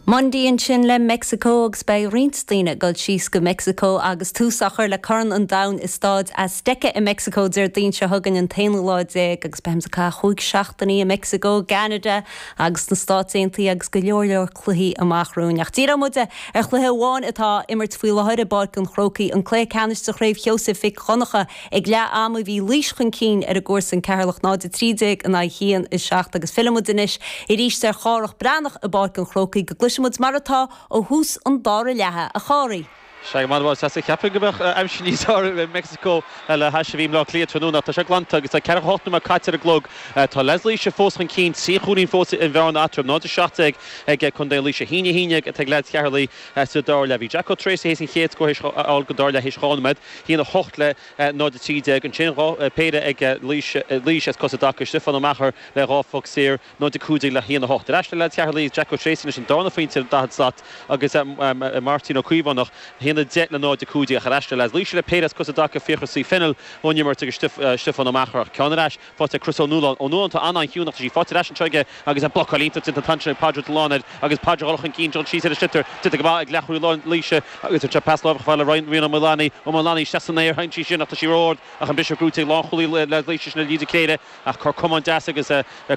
Mundy ansin le Meicsiceo agus beidh roinnt daoine ag dul síos go Meicsiceo agus tús á chur le Corn an Domhain i Stáid Azteca i Meicsiceo Déardaoin seo chugainn, an t-aonú lá déag agus beidh mise ag caitheamh chúig seachtainí i Meicsiceo, gCeanada agus sna Stáit Aontaithe agus go leor leor cluichí amach romhainn. Ach díreoidh muid ar chluiche amháin atá á imirt faoi láthair i bPáirc an Chrócaigh, an Cluiche Ceannais de Chraobh Sheosaimh Mhic Dhonncha. Ag leath ama bhí Laois chun cinn ar a gcomharsain Ceatharlach 0-13 in aghaidh 1-7 agus fillfidh muid anois arís ar Chárthach Breathnach i bPáirc an Chrócaigh go gcloisfidh muid mar atá ó thús an dara leatha, a Chárthaigh. Sea, go raibh maith agat, sea, cheapfainn go mbeadh aimsir níos fearr i Meicsiceo le hais a bhí i mBleá Cliath tráthnóna ach tá sé glanta agus tá ceathracha hocht nóiméad caite ar an gclog. Tá leaids Laoise fós chun cinn, trí chúilín fós an bhearna eatarthu, 0-17 ag contae Laoise. 1-11 atá ag leaids Cheatharlaigh. sa dara leath. Bhí Jack Ó Treasaigh théis an chéad scór a fháil den dara leath théis dhá nóiméad. 1 8 le 0 13. Ansin bhí péire ag Laois as cosa i dtaca. Stiofán Ó Meachair le dhá phoc saor, 0 15 le 1 8. Ar ais le leaids Cheatharlaigh ag Jack Ó Treasaigh anois an dárna phointe ar an daichead slat agus Máirtín Ó Caomhánach 1 10 le 0 15. Ach ar ais le leaids Laoise le péire as cosa i dtaca, Fiachra C Fennell ón imirt agus Stiofán Ó Meachair ach ceann ar ais. faighte ag Chris Ó Nualláin, Ó Nualláin, tá an an chiúineach, tá sí faighte ar ais anseo aige agus blocáil iontach déanta an t-am sin ag Pádraig Delaney air agus Pádraig dhul chun cinn dul síos ar an sliotar déanta go maith ag leathchúlaí Laoise agus an pas láimhe chomh fada le Rian Ó Maolánaigh, Ó Maolánaigh isteach san aer sheinm sí sin ach tá sí ró-ard ach an briseadh buaite ag lánchúlaí Laoise sin é Lee de Cléir ach cor camán deas agus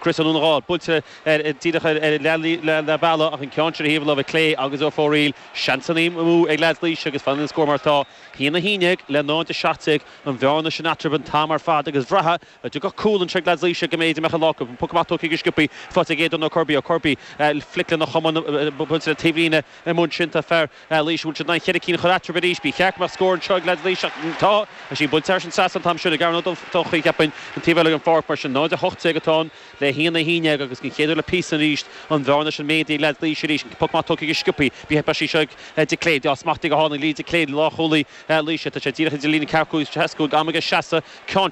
Chris Ó Nualláin buailte ar díreach ar leath leathbhealaigh ach an ceann sin ar thaobh láimhe clé agus ar fóraoil seansanna amú ag leaids Laoise agus fanann an scór mar atá, 1 a hAon dhéag le 0 a Seacht déag. an bhearna sin eatarthu an t-am ar fad agus bhraithfeá dá dtiocfadh cúl i dtreo leaids Laoise go mb'fhéidir go mbeadh an lá acu. An poc amach tógtha go sciobtha faighte ag Aodán Ó Corrbuí. Ó Corrbuí, flic lena chamán, bainte le taobhlíne i mbun sin. Tá fear Laoise bhfuil siad in ann cheithre cinn a chur eatarthu arís. Ba cheart go mbeadh scór i dtreo leaids Laoise ach tá sí buailte thar an trasnán an t-am sin ag Aaron Ó Donnchaidh cheapfainn an taobh eile den pháirc mar sin. 0:18 atá an. le hAon a haon dhéag agus den chéad uair le píosa arís an bhearna sin méadaithe ag leaids Laoise arís an poc amach tógtha go sciobtha buaite an babhta seo ag de Cléir agus smachtaithe go hálainn ag Lee de Cléir lánchúlaí Laoise tá sé díreach idir líne ceathracha cúig is seasca cúig am aige seasadh